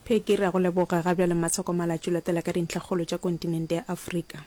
Peggy, re a go leboga. Ga bjale Masoko Malatšu latela ka dintlhakgolo tša kontinente ya Afrika.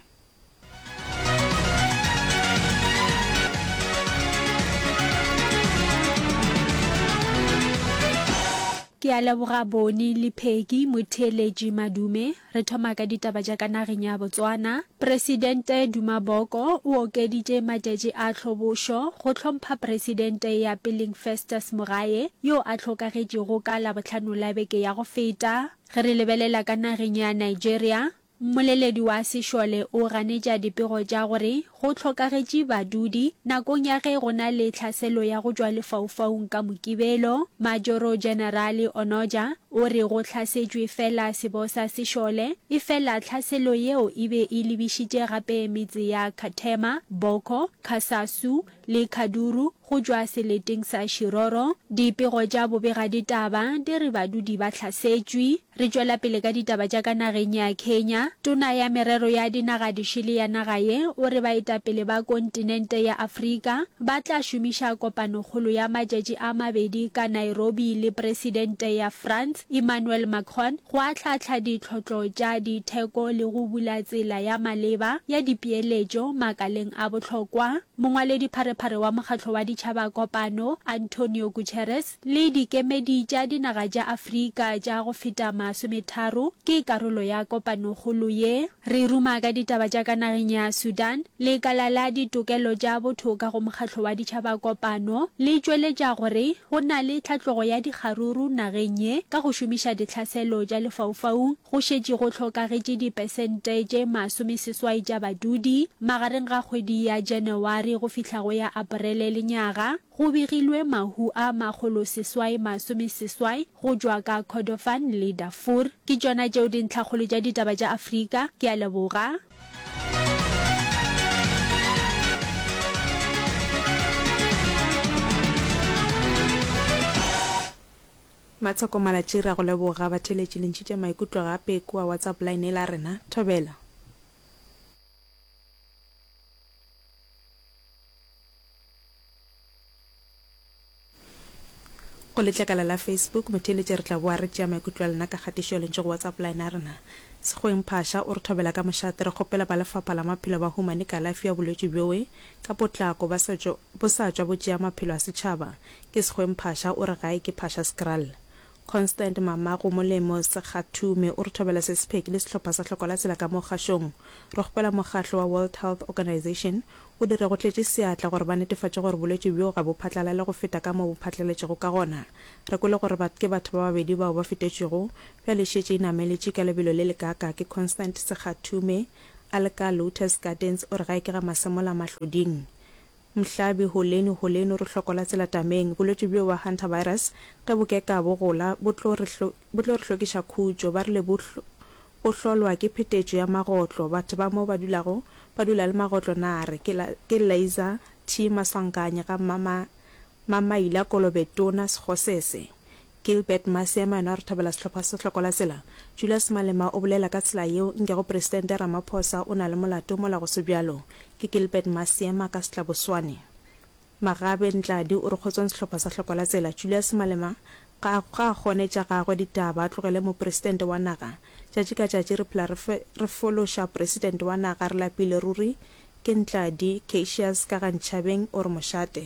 Ke a leboga Boni le Peggy, motheeletši Madume, Re thoma ka ditaba tša ka nageng ya Botswana. Presidente Duma Boko o okeditše matšatši a tlhobošo go hlompha Presidente ya peleng Festus Mogae yo a hlokagetšego ka Labohlano la beke ya go feta. Ge re lebelela ka nageng ya Nigeria, mmoleledi wa sešole o ganetša dipego tša gore Go hlokagetše badudi. Nakong ya ge go na le tlhaselo ya go tšwa lefaufaung ka Mokibelo, Majoro Jenerale Onoja o re go hlasetšwe fela sebosa se šole, efela tlhaselo yeo e be e lebišitše gape metse ya Kathema, Boko, Kasasu le Kaduru. Go tšwa seleteng sa Shiroro, dipego tša bobegaditaba di re badudi ba hlasetšwe. Re tšwela pele ka ditaba tša ka nageng ya Kenya. Tona ya Merero ya Dinagadišele ya naga ye o re baetapele ba kontinente ya Afrika ba tla šomiša kopanokgolo ya matšatši a mabedi ka Nairobi le Presidente ya France, Emmanuel Macron go ahlaahlaa ditlhohlo tša ditheko le go bula tsela ya maleba ya dipeeletšo makaleng a bohlokwa. Mongwaledipharephare wa Mokgatlo wa Ditšhaba Kopano, Antonio Guterres, le dikemedi tša dinaga tša Afrika tša go feta masometharo ke karolo ya kopanokgolo ye. Re ruma ka ditaba tša ka nageng ya Sudan, lekala la ditokelo tša botho ka go Mokgatlo wa Ditšhaba Kopano le tšweletša gore go na le tlhatlogo ya dikgaruru nageng ye ka go šomiša ditlhaselo tša lefaufaung go šetše go hlokagetše dipesente tše masomeseswai tša badudi magareng ga kgwedi ya Janawari go fihla go ya Aparele lenyaga Go begilwe mahu a makgoloseswai masomeseswai go tšwa ka Kordofan le Darfur. Ke tšona tšeo dintlhakgolo tša ditaba tša Afrika. Ke a leboga. Matsoko Malatji re a go leboga. Batheeletši le ntšhitše maikutlo gape kua WhatsApp line e la rena. Thobela. Go letlakala la Facebook, motheeletše re tla boa re tšea maikutlo a lena ka kgatišo ya lentšu go WhatsApp line ya rena. Sekgoeng Phasha o re thobela ka mošate, Re kgopela ba Lefapha la Maphelo ba humane kalafi ya bolwetši bjoe ka potlako ba sa tšwa bo tšea maphelo a setšhaba. Ke Sekgoeng Phasha, o re gae ke Phasha Skrall. Constant Mamago Molemo Sekgathume o re thobela se sepheki le sehlopha sa Hloko la Tsela ka mo kgašong. Re kgopela mokgatlo wa World Health Organization o dire go tletše seatla gore ba netefatše gore bolwetši bjo ga bo phatlalale go feta ka mo bo phatlaletšego ka gona. Re kwele gore bat ke batho ba babedi bao ba fetetšwego, bjale e šetše e nameletše ka lebelo le lekaaka ke Constant Sekgathume, Alka, Lotus Gardens, o re ga e ke ga masemola mahloding. Mhlabi, Holeni, holeni re hloko la tsela tameng. Bolwetši bjo ba Hantavirus ge bo keka bo gola bo tlo re bo tlo re hlokiša khutšo. Ba rile bo bo hlolwa ke phetetšo ya magotlo. Batho ba mo ba dulago ba dula le magotlo nare ke la ke Laser T. Maswanganyi ga Mama Mamaila Kolobe Tona Sekgosese Gilbert Maseema yena o re thabela sehlopha se hloko la tsela. Julius Malema o bolela ka tsela yeo nkego Presidente Ramaphosa o na le molato mola go se bjalo. Ke Gilbert Maseema ka Setlaboswane. Magabe Ntladi o re kgotsong sehlopha sa hloko la tsela. Julius Malema ga a ga a kgone tša gagwe ditaba a tlogele Mopresidente wa naga. Tšatši ka tšatši re phela re fe re fološa Presidente wa naga re lapile ruri. Ke Ntladi Cacious ka ga Nchabeng o re mošate.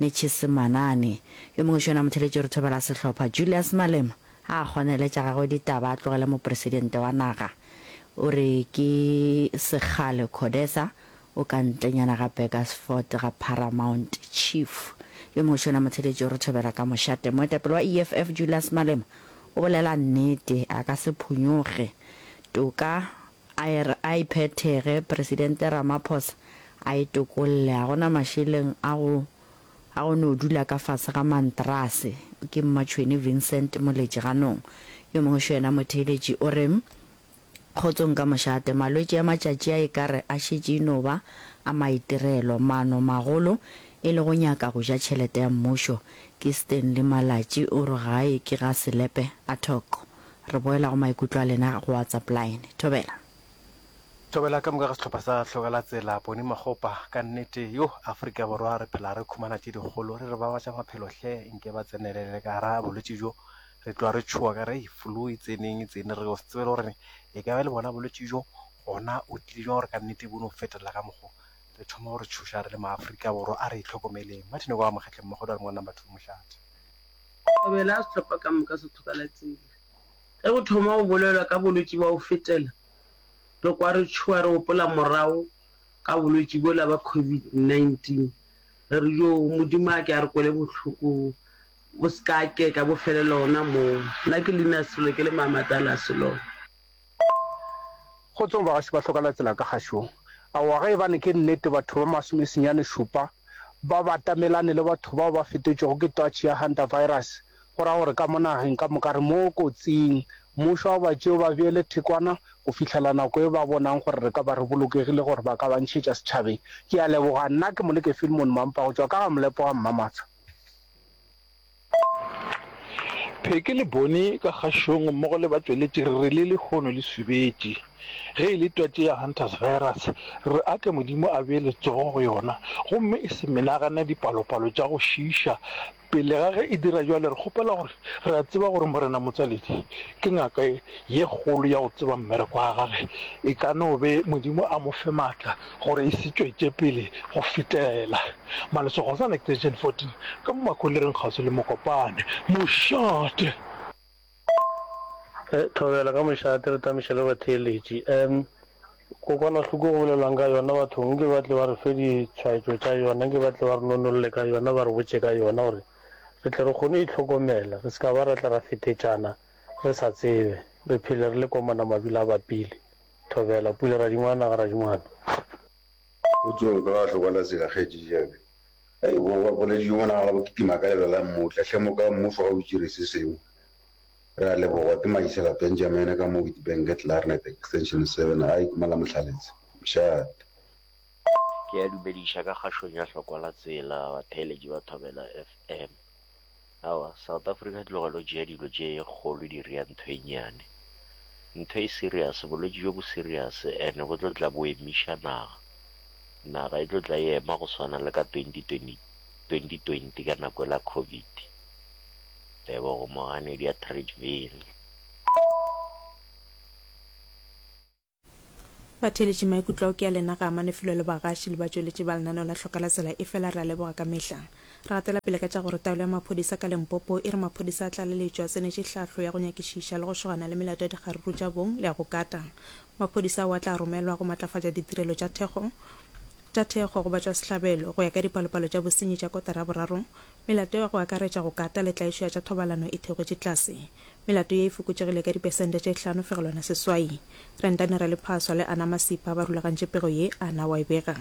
Netšhe Semanane. Yo mongwe še yona motheletšorithobela sehlopha, Julius Malema, a a kgoneletša gagwe ditaba a tlogele mopresidente wa naga. O re ke sekgale Codesa o ka ntlenyana ga Burgersfort ga Paramount Chief. Yo mongwe še yona motheletšorithobela ka mošate, moetapele wa EFF, Julius Malema, o bolela nnete, a ka se phonyoge. Toka A e re a e phethege, Presidente Ramaphosa a e tokolle. Ga go na mašeleng a go a go no dula ka fase ga mantrase, ke Mmatšhwene Vincent Moletši ganong. Yo mongwe xo yena motheeletši o re, Kgotsong ka mošate, malwetši a matšatši a e ka re a šetše e no ba a maitirelo. Mano magolo e le go nyaka go ja tšhelete ya mmušo, ke Stanley Malatši o re gae ke ga Selepe Athoco. Re boela go maikutlo a lena go WhatsApp line. Thobela. Thobela, ka moka ga sehlopha sa Hlokalatsela, Boni Makgopa, ka nnete, yo, Afrika Borwa re phela re khumana tše dikgolo, re re ba batša maphelo hle, nke ba tsenelele ka gara bolwetši bjo, re tloga re tšhowa ka re, flu e tseneng, e tsene, re go se tsebe le gore e ka ba le bona bolwetši bjo, gona o tlile bja gore ka nnete bo no fetelela ka mokgo, re thoma go re tšhoša re le ma Afrika Borwa, a re itlhokomeleng. Martin Okoa Mokgetleng, Mokgotho a re Ngwanambatho o mohlathi. Kobela a sehlopha ka moka se thokalatšile. Ge go thoma go bolelwa ka bolwetši bwa go fetela, re kwa re tšhoga re gopola morago ga bolwetši bjola bja COVID-19. Re re, Yoo, Modimo a ke a re kwele bohloko, bo se ka keka bo felela gona moo. Nna ke Linus Sello, ke le Maama Dallas Sello. Kgotsong bagešo ba hloka la tsela ka gašong. Aowa ge ebane ke nnete batho ba masome senyane šupa ba batamelane le batho bao ba fetetšwego ke twatši ya hantavirus, go ra gore ka mo nageng ka moka re mo kotsing. Mmušo a o ba tšee o ba beele thekwana go fihlela nako e ba bonang gore re ka ba re bolokegile gore ba ka ba ntšhetša setšhabeng. Ke a leboga. Nna ke Moleke Filmon Mampa go tšwa ka ga Molepo ga Mmamatsha. Pheke le Boni ka kgašong mmogo le batšweletši re re le lehono le subetše. Ge e le twatši ya Hunters virus, re a tle Modimo a bee letsogo go yona gomme e se menagane dipalopalo tša go šiiša. Pele ga ge e dira bjale re kgopela gore re a tseba gore Morena Motswaledi ke ngaka ye kgolo ya go tseba mmereko wa gage. E ka no be Modimo a mo fe maatla gore e se tšwetše pele go fetela Malesego sa Lactation 14 ka mo makholereng kgauswi le Mokopane. Mošate! E, thobela ka mošate, re tamiša le batheeletši. E, kokwanahloko go bolelwang ka yona bathong, nke ba tle ba re fe ditshwaetšo tša yona, nke ba tle ba re nonolle ka yona, ba re botše ka yona gore re tle re kgone go itlhokomela, re se ka ba ra tla ra fetetšana re sa tsebe, re phele re le komana mabila a bapile. Thobela, Pula Radingwana ga Radingwana. O tsoge o ka ga hlokwa la tsela kgetši jabe. Hei bo ba boledi yo mona ga la bo kitima ka lebelo la mmotla hle mo ka mmušo ga o itšire se sengwe. Re a lebogwa ke Maitsela Benjamin ka mo Witbank at Larnet extension seven gae ke mo la Mohlaletse. Mshat. Ke a dumediša ka kgašong ya hlokwa la tsela batheeletši ba Thobela FM. Aowa, South Africa tlogela go tšea dilo tše kgolo di rea ntho e nnyane. Ntho e serious, bolwetši bjo bo serious and bo tlo tla bo emiša naga. Naga e tlo tla e ema go swana le ka 2020 ka nako ela Covid. Tebogo Moganedi ya Tradeville. Batheeletši maikutlo ao ke a lena ga a mane felo le bagaši le batšweletši ba lenaneo la Hloka la Tsela efela re a leboga ka mehla. Re gatela pele ka tša gore taolo ya maphodisa ka Limpopo e re maphodisa a tlaleletšo a tsenetše hlahlo ya go nyakišiša le go šogana le melato ya dikgaruru tša bong le ya go kata. Maphodisa ao a tla romelwa go matlafatša ditirelo tša thekgo tša thekgo go batšwasehlabelo. Go ya ka dipalopalo tša bosenyi tša kotara ya boraro, melato ya go akaretša go kata le tlaišo ya tša thobalano e theogotše tlase. Melato ye e fokotšegile ka dipesente tše hlano fegelwana seswai. Rentane Raliphaswa le Ana Masipa ba rulagantše pego ye, Ana wa e bega.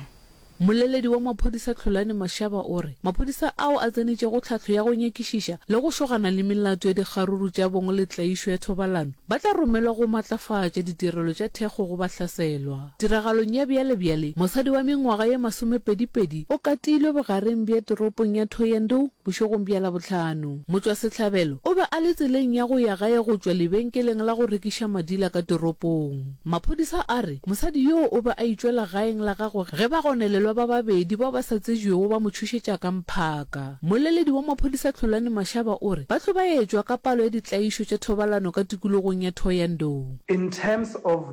Mmoleledi wa maphodisa Tlholani Mashaba o re maphodisa ao a tsenetšego tlhahlo ya go nyakišiša le go šogana le melato ya dikgaruru tša bong le tlaišo ya thobalano ba tla romelwa go matlafatša ditirelo tša thekgo go bahlaselwa. Tiragalong ya bjalebjale, mosadi wa mengwaga ye masomepedipedi o katilwe bogareng bja toropong ya Thohoyandou bošegong bja Labohlano. Motšwasehlabelo o be a le tseleng ya go ya gae go tšwa lebenkeleng la go rekiša madila ka toropong. Maphodisa a re mosadi yoo o be a itšwela gaeng la gagwe ge bagonelelwa ba babedi bao ba sa tsejwego ba mo tšhošetša ka mphaka. Mmoleledi wa maphodisa Tlholani Mashaba o re ba hlobaetšwa ka palo ya ditlaišo tša thobalano ka tikologong ya Thohoyandou. In terms of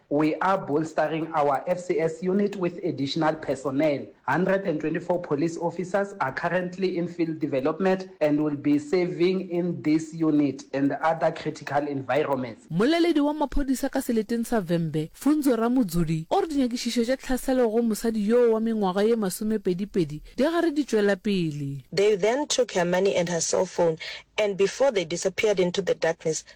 We are bolstering our FCS unit with additional personnel, 124 police officers are currently in field development and will be serving in this unit and other critical environments. Mmoleledi wa maphodisa ka seleteng sa Vhembe, Funzo Ramudzuli, o re dinyakišišo tša tlhaselo go mosadi yoo wa mengwaga ye masomepedipedi di gare di tšwela pele. They then took her money and her cell phone and before they disappeared into the darkness,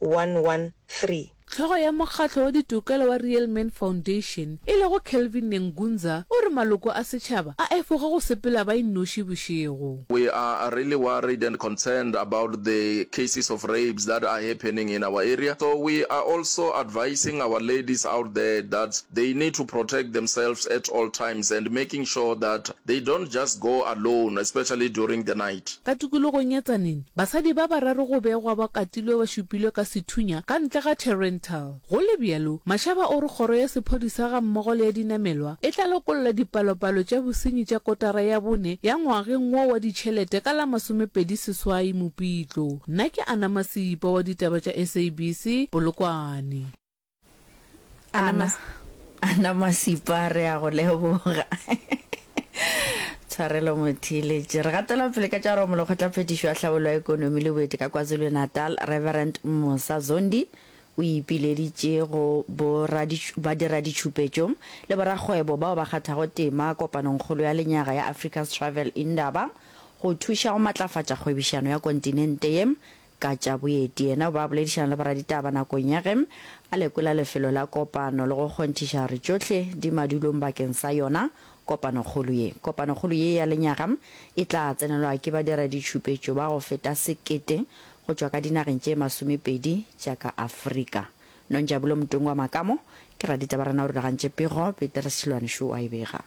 113. Hlogo ya mokgatlo wa ditokelo wa Real Men Foundation e lego Kelvin Nengunza o re maloko a setšhaba a efoga go sepela ba innoši bošego. We are really worried and concerned about the cases of rapes that are happening in our area so we are also advising our ladies out there that they need to protect themselves at all times and making sure that They don't just go alone, especially during the night. Ka tikologong ya Tzaneen, basadi ba bararo go begwa ba katilwe ba šupilwe ka sethunya ka ntle ga Therrenthal. Go le bjalo, Mashaba o re kgoro ya sephodisa gammogo le ya dinamelwa e tla lokolla dipalopalo tša bosenyi tša kotara ya bone ya ngwageng wo wa ditšhelete ka la masomepedi seswai Mopitlo. Nna ke Anna Masipa wa ditaba tša SABC, Polokwane. Ana, Ana Masipa re a go leboga. Tshwarelo Mothiletše. Re gatela pele ka tša romo lekgotlaphethišo ya tlhabollo ya ekonomi le boeti ka KwaZulu-Natal, Reverend Musa Zondi o ipileditše go badiraditšhupetšo le borakgwebo bao ba kgathago tema kopanongkgolo ya lenyaga ya Africa's Travel Indaba go thuša go matlafatša kgwebišano ya kontinente ye Ka tša boeti, yena o be a boledišana le boraditaba nakong ya ge a lekola lefelo la kopano le go kgonthiša gore tšohle di madulong bakeng sa yona kopanokgolo ye. Kopanokgolo ye ya lenyaga e tla tsenelwa ke badiraditšhupetšo ba go feta sekete go tšwa ka dinageng tše masomepedi tša ka Afrika. Nonjabulo Mtungwa Makamo ke raditabarena o rulagantše pego, Peter Seloane Šo a e bega.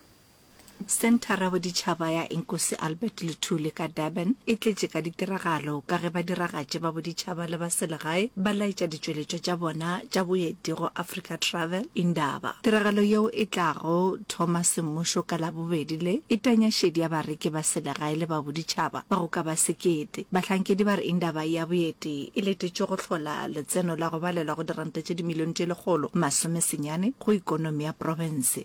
Senthara ya Boditšhaba ya Inkosi Albert Luthuli ka Durban e tletše ka ditiragalo ka ge badiragatši ba boditšhaba le ba selegae ba laetša ditšweletšwa tša bona tša boeti go Africa Travel Indaba. Tiragalo yeo e tlago thoma semmušo ka Labobedi le, e tanya šedi ya bareki ba selegae le ba boditšhaba ba go ka ba sekete. Bahlankedi ba re Indaba ya boeti e letetšwe go hlola letseno la go balelwa go diranta tše dimilione tše lekgolo masome senyane go ekonomi ya profense.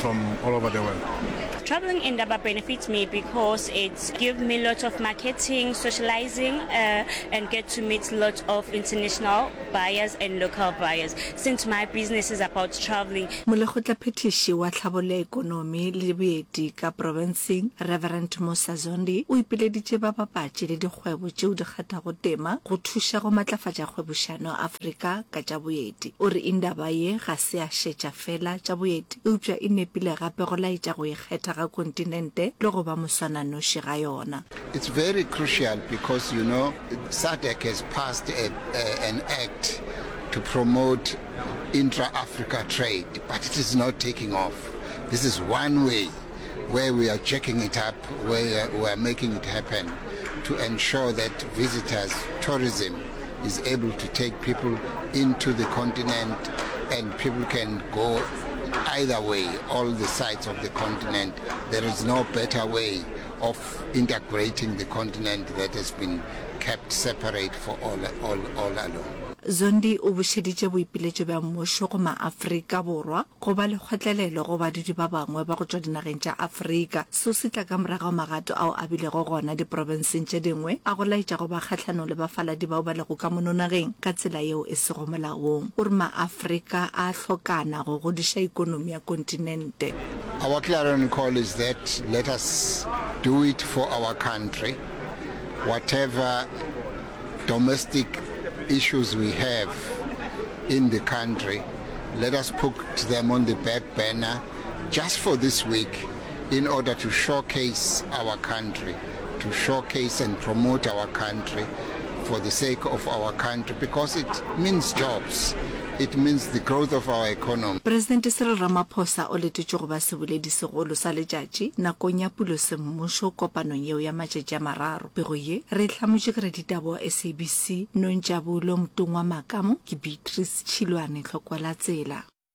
from all over the world. Traveling in Daba benefits me because it gives me lots of marketing, socializing, uh, and get to meet lots of international buyers and local buyers since my business is about traveling. Molekgotla phethiši wa tlhabollo ya ekonomi le boeti ka profenseng Reverend Musa Zondi o ipileditše babapatši le dikgwebo tšeo di kgathago tema go thuša go matlafatša kgwebošano Afrika ka tša boeti. O re indaba ye ga se ya šetša feela tša boeti eupša e nepile gape go laetša go ikgetha ga kontinente le go ba moswananoši ga yona. It's very crucial because you know SADC has passed a, a, an act to promote intra-Africa trade but it is not taking off. This is one way where we are jacking it up, where we are making it happen to ensure that visitors, tourism, is able to take people into the continent and people can go either way, all the sides of the continent. There is no better way of integrating the continent that has been kept separate for all, all, all along. Zondi o bušeditše boipiletšo bja mmušo go ma-Afrika Borwa go ba lekgotlelelo go badudi ba bangwe ba go tšwa dinageng tša Afrika Seo se tla ka morago ga magato ao a bilego gona diprobenseng tše dingwe a go laetša go ba kgahlanong le bafaladi bao ba lego ka mono nageng ka tsela yeo e sego molaong. O re Maafrika a a hlokana go godiša ikonomi ya kontinente. Our clarion call is that let us do it for our country, whatever domestic issues we have in the country, let us put them on the back burner just for this week. in order to showcase our country, to showcase and promote our country for the sake of our country because it means jobs, it means the growth of our economy. Presidente Cyril Ramaphosa o letetšwe go ba seboledi segolo sa letšatši nakong ya pulo semmušo kopanong yeo ya matšatši a mararo. Pego ye re e hlamotše ke raditaba wa SABC Nontšabulo Mtungwa Makamo ke Beatrice Tšhilwane Tlhokwalatsela.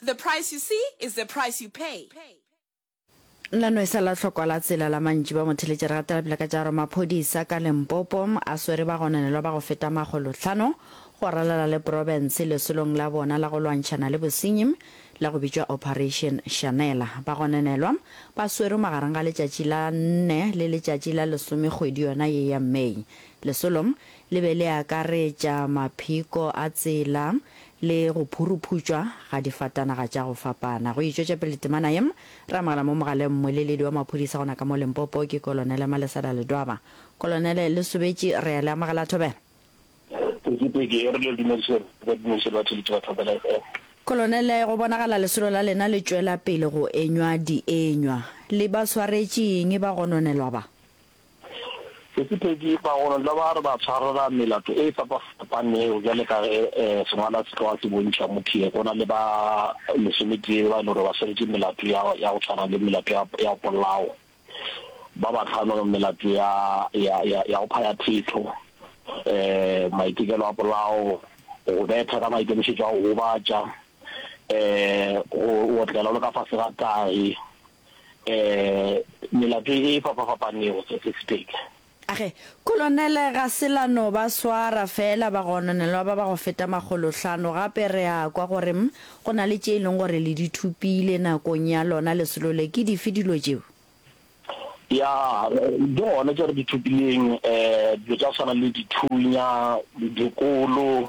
The price you see is the price you pay. La no e sa la hlokwa la tsela la mantši ba motheletša re gatela pele ka tša gore maphodisa ka Limpopo a swere ba gononelwa ba go feta makgolo hlano go ralala le profense lesolong la bona la go lwantšhana le bosenyi la go bitšwa Operation Shanela. Ba gononelwa ba swerwe magareng ga letšatši la nne le letšatši la lesome kgwedi yona ye ya May. Lesolo Le be le akaretša mapheko a tsela le go phuruphutšwa ga difatanaga tša go fapana. Go e tšwetša pele temana ye, re amogela mo mogaleng mmweleledi wa maphodisa gona ka mo Limpopo, ke Kolonele Malesela Ledwaba. Kolonele, le sobetše, re a le amogela thobela. Pekipeki e re le dumediše gore re ka dumediša batho le tšeba Thobela FM. Kolonele, go bonagala lesolo la lena le tšwela pele go enywa dienywa. Le ba swaretše eng ba gononelwa ba? Sephethephethe, bagolontlha ba re ba tshwarela melato e fapafapanego bjale ka ge sengwala se tloga se bontšha Mutie go na le ba lesometee ba e le gore ba swaretše melato ya ya go tshwana le melato ya ya polao, ba bahlano melato ya ya ya ya go phaya thetho, maitekelo a polao, go betha ka maikemišetšo a go gobatša, go otlela o le ka fase ga tahi. um melato e fapafapanego se se sepedi. Age, Kolonele, ga se la no ba swara feela bagononelwa ba ba go feta makgolohlano, gape re a kwa gore go na le tše e leng gore le di thopile nakong ya lona lesolo le. Ke dife dilo tšeo? Ya, di gona tše re di thopileng, um dilo tša go swana le dithunya, dikolo.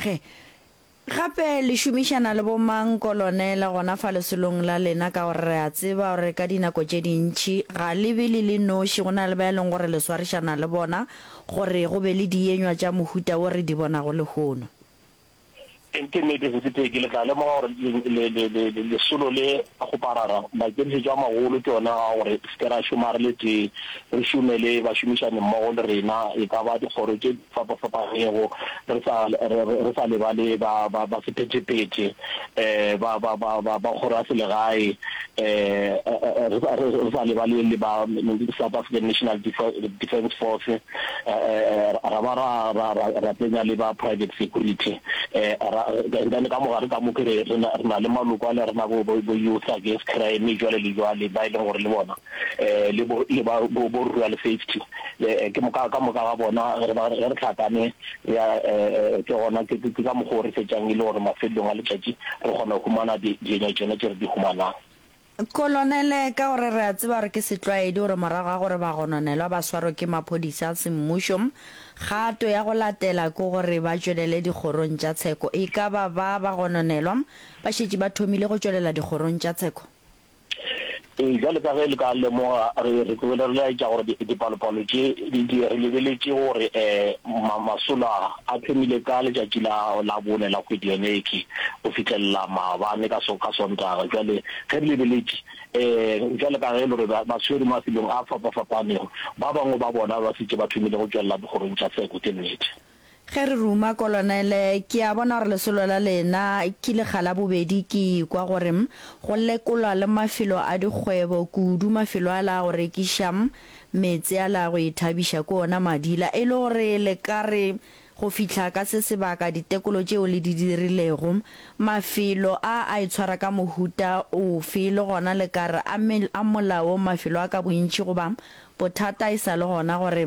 Ge gape le šomišana le bo-mang, kolonele, gona fa lesolong la lena, ka gore re a tseba gore ka dinako tše dintši ga le be le le noši, go na le ba e leng gore le swarišana le bona, gore go be le dienywa tša mohuta wo re di bonago lehono. Ke nnete, sethithe, ke le tla lemoga gore le, le, le, le, lesolo le a goparara. Maikemišetšo a magolo ke ona a gore re se ke ra šoma re le tee, re šome le bašomišanimmogo le rena, e ka ba dikgoro tše fapafapanego, re sa, re, re, re sa lebale ba, ba, ba sephetepete, eh, ba, ba, ba, ba, ba kgoraselegae, eh, eh, eh, re, sa, re, re sa lebale le ba South African National Defence Force, eh, eh, eh, ra ba ra, ra, ra, ra tsenya le ba private security, eh, ra, and then ka mogare ka mo ke re, re na, re na le maloko a le rena bo, bo, bo Youth Against Crime, jwale le jwale, ba e leng gore le bona le bo le ba bo bo rural safety eh, ke moka ka moka ga bona re ba re tlhakane re a eh, ke gona ke ke ka mokgwa o re fetšang e le gore mafelelong a letšatši re kgona go humana dienyo tšone tše re di humanang Kolonele, ka gore re a tseba gore ke setlwaedi gore morago ga gore bagononelwa ba swarwe ke maphodisa a semmušo, kgato ya go latela ke gore ba tšwelele dikgorong tša tsheko. E ka ba ba bagononelwa ba šetše ba thomile go tšwelela dikgorong tša tsheko? Ee, bjalo ka ge le ka lemoga, re, re tsogile re laetša gore di, dipalopalo tše di, di, re lebeletše gore e, ma, masolo a, a thomile ka letšatši la, la bone la kgwedi yone ekhwi, go fihlelela maabane ka so, ka Sontaga. Bjale, ge re lebeletše, e, bjalo ka ge e le gore ba, ba swerwe mafelong a fapafapanego, ba bangwe ba bona ba šetše ba thomile go tšwelela dikgorong tša Seko. Ke nnete. Ge re ruma, Kolonele, ke a bona gore lesolo la lena ke lekga la bobedi. Ke ikwa gore go lekolwa le mafelo a dikgwebo, kudu mafelo ala a go rekiša, meetse ala a go ithabiša ko ona, madila, e le gore le ka re, go fihla ka se sebaka, ditekolo tšeo le di dirilego, mafelo a a itshwara ka mohuta ofe, le gona le ka re, a, a molaong mafelo a ka bontši, goba bothata e sa le gona gore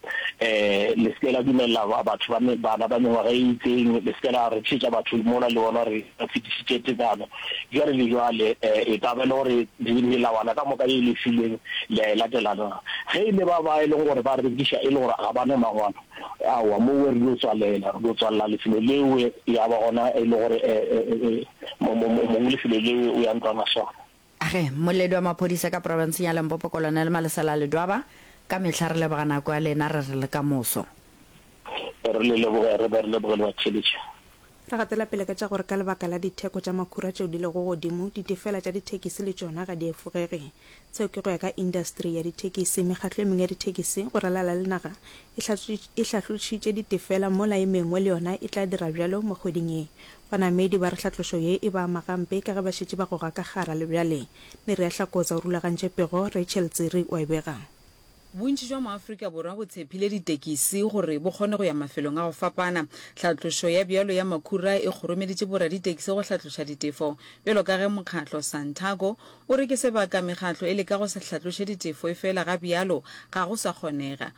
le se ke la dumelela batho ba bana ba mengwaga e itseng, le se ke la rekišetša batho mola le bona re fetišitše tekano. Bjale le bjale, e ka ba e le gore melawana ka moka ye le e filweng le a e latela na? Ge e le ba ba e leng gore ba rekiša e le gore ga ba na mangwalo, aowa, moo re dio tswalela, re dio tswalela lefelo leo, ya ba gona e le gore mong lefelo leo o ya ntlwana swara. Ge mmoledi wa maphodisa ka profenseng ya Limpopo Kolonele Malesela Ledwaba, Ka mehla re leboga nako ya lena, re re le ka moso. Re le leboga, re ba re leboge le ba theeletše. Re gatela pele ka tša gore ka lebaka la ditheko tša makhura tšeo di lego godimo, ditefela tša dithekisi le tšona ga di efogege. Seo ke go ya ka indasteri ya dithekisi. Mekgatlo e mengwe ya dithekisi go ralala le naga e hlahlotšitše ditefela mola e mengwe le yona e tla dira bjalo mo kgweding ye. Banamedi ba re hlatlošo ye e ba ama gampe ka ge ba šetše ba goga ka gagara le bjale. Nerea Hlakoza o rulagantše pego, Rachel Tsiri o e bega. Bontši jwa maAfrika Borwa bo tshephile ditekisi gore bo kgone go ya mafelong a go fapana. Hlatlošo ya bjalo ya makhura e kgoromeditše boraditekisi go hlatloša ditefo bjalo ka ge mokgatlo Santaco o re ke sebaka mekgatlo e leka go se hlatloše ditefo efela ga bjalo ga go sa kgonega.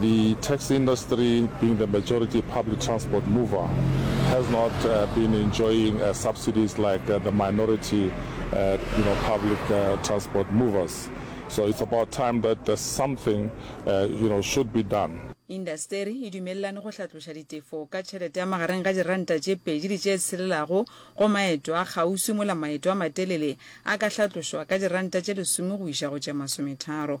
The taxi industry, being the majority public transport mover, has not been enjoying subsidies like the minority you know, public transport movers. So it's about time that something you know, should be done. Indasteri e dumelelane go hlatloša ditefo ka tšhelete ya magareng ga diranta tše pedi le tše tshelelago go maeto a kgauswi mola maeto a matelele a ka hlatlošwa ka diranta tše lesome go iša go tše masometharo.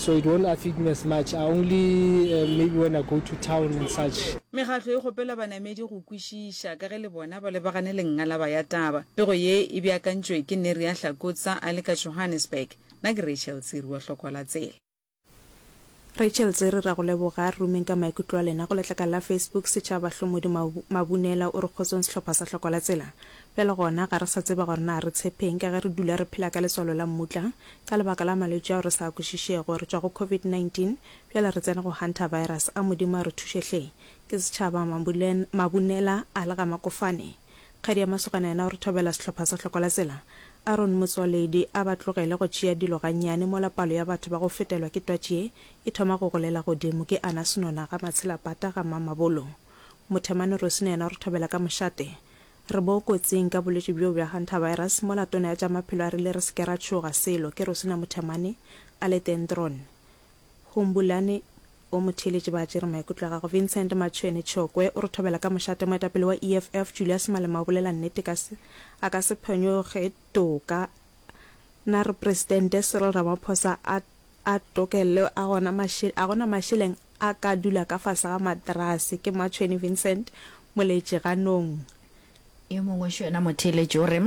so it won't affect me as much I only uh, maybe when I go to town and such. Mekgatlo e kgopela banamedi go kwešiša ka ge le bona ba lebagane le ngalaba ya taba. Pego ye e beakantšwe ke Neria Hlakotsa a le ka Johannesburg. Na ke Rachel Tsiri wa Hloko la Tsela. Rachel Tsiri ra go leboga. Re rumeng ka maikutlo a lena go letlakala la Facebook Setšhaba Hlommodi Mabunela o re kgotsong sehlopha sa Hloko la Tsela Bjale gona, ga re sa tseba gore na re tshepeng, ka ge re dula re phela ka letswalo la mmutla. Ka lebaka la malwetši ao re sa a kwešišego, re tšwa go Covid 19, bjale re tsene go Hantavirus. A Modimo a re thuše hle! Ke setšhaba, Mabulen, Mabunela, a le ga Makofane. Kgadi ya masogana yena o re thobela sehlopha sa Hlokola-tsela. Aaron Motsoaledi, a ba tlogele go tšea dilo gannyane mola palo ya batho ba go fetelwa ke twatši ye e thoma go golela godimo. Ke Ana Senona, ga Matshela Pata, ga Mamabolo. Mothemane Rosina yena o re thobela ka mošate. Re bo kotsing ka bolwetši bjo bja hantavirus mola Tona ya tša Maphelo a rile re se ke ra tšhoga selo, ke Rosina Muthamane, Aletendron Humbulani o mo theeletše ba tšere maikutlo a gagwe. Vincent Matshweni Tshokwe o re thobela ka mošate moetapele wa EFF Julius Malema o bolela nnete ka se a ka se phonyoge toka na re Presidente Cyril Ramaphosa a A Tokelle a gona maše, a gona mašeleng a ka dula ka fase ga materase. Ke Matshweni Vincent, moleetši ganong. Yo mongwe xo yena motheeletši o re,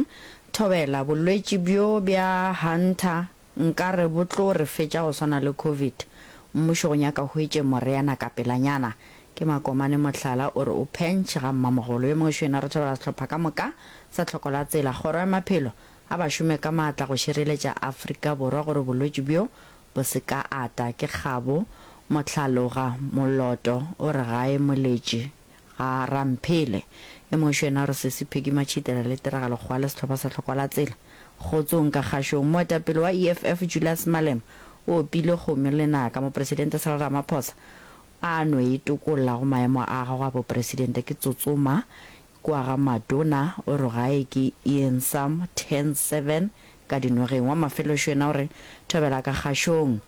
Thobela, bolwetši bjo bja Hunter nkare bo tlo re fetša go swana le Covid. Mmušo go nyaka o hwetše moreana ka pelanyana. Ke Makomane Mohlala o re o phenš ga mmamogolo. Yo mongwe xo yena re thobela sehlopha ka moka sa Tlhoko la Tsela, Kgoro ya Maphelo A ba šome ka maatla go šireletša Afrika Borwa gore bolwetši bjo bo se ka ata. Ke kgabo, Mohlaloga, Moloto o re gae moletši ga Ramphele. E mošo yena o re Sesi Peggy Matšhitela le Tiragalo Kgowa le sehlopha sa Tlhokwalatsela. Kgotsong ka kgašong. Moetapele wa EFF Julius Malema o opile kgomo lenaka. Mopresidente Cyril Ramaphosa a no e tokolla go maemo a gagwe a bopresidente. Ke tsotsoma Kua ga Maduna o re gae ke Ian Sam 10 7 ka dinogeng wa mafeloxo yena o re thobela ka kgaxong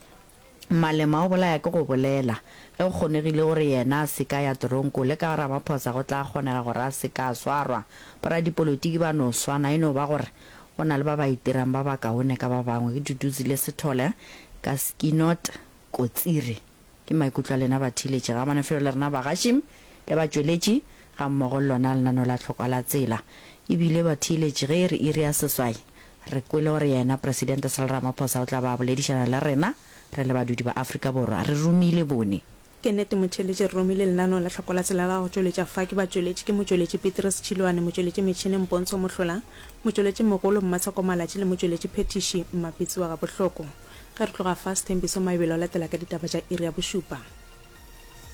Malema o bolaya ke go bolela ge go kgonegile o re yena a se ka ya toronko le ka Ramaphosa go tla kgonega gore a se ka swarwa boradipolotiki ba no swana e no ba gore go na le ba ba itirang ba bakaone ka ba bangwe ke Duduzi le Sethole ka Skinot Kotsiri Ke maikutlo a lena batheeletši ga manofelo le rena bagaši le batšweletši ga mmogo le lona lenaneo la Tlhokwa la Tsela. E bile, batheeletši, ge e re iri ya seswai, re kwele gore yena Presidente Cyril Ramaphosa o tla ba a boledišana le rena re le badudi ba Afrika Borwa. Re romile bone. Ke nnete motheeletši, re romile lenaneo la Tlhokwa la Tsela la go tšweletša fa. Ke batšweletši, ke motšweletši Petrus Tšhiloane, motšweletši metšhineng Pontsho Mohlola, motšweletši mogolo Mmatsheko Malatši le motšweletši phethiši Mmapitsi wa Gabohloko. Ge re tloga fa, Sthembiso Maebele o latela ka ditaba tša iri ya bošupa.